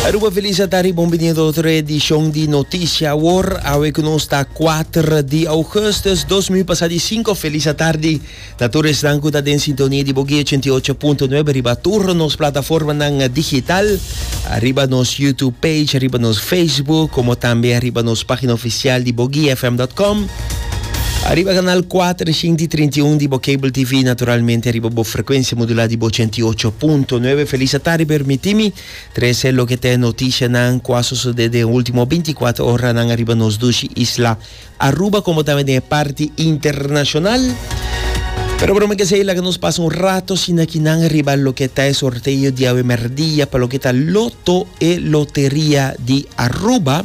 Aruba Felicia ta riba un binido otro edicion di Noticia Awor. Awe cu nos ta 4 di augustus 2025. Feliz atardi na tur esnan cu ta den sintonia di Boguey 88.9 riba tur nos plataformanan digital. Ariba nos YouTube page, ariba nos Facebook, como tambe ariba nos pagina oficial di bogueyfm.com. Ariba kanal kuater, shinti trinta i un di bo cable TV, naturalmente ariba bo frekuensia modulá di bo ochenta i ocho punto nuebe. Felis atardi, permití mi trese loke ta e notishanan ku a sosodé den e último binti kuater oranan ariba nos dushi isla Aruba, komo tambe den e parti internashonal. Pero broma ke esei, laga nos pasa un rato shinakinan riba loke ta e sorteo di awe merdia pa loke ta Loto e Loteria di Aruba.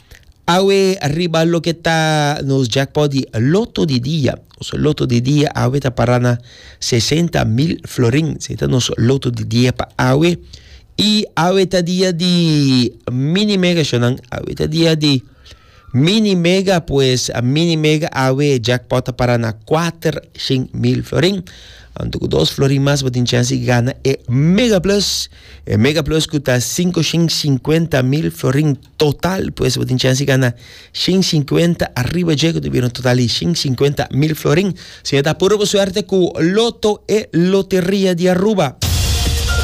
Awe riba loke ta nos jackpot di loto di dia. Nos loto di dia awe ta para na 60 mil florin. Se ta nos loto di dia pa awe. I awe ta dia di mini mega shonan. Awe ta dia di mini mega pues a mini mega awe jackpot ta para na 400 mil florin. Anto ku dos florin mas bo tin chance di gana e mega plus. E mega plus ku ta 550 mil florin. Total pues bo tin chance di gana shin sinkuenta ariba dje ku ta bira un total di shin sinkuenta mil florin. Si e ta puru bo suerte ku Loto e loteria di Aruba.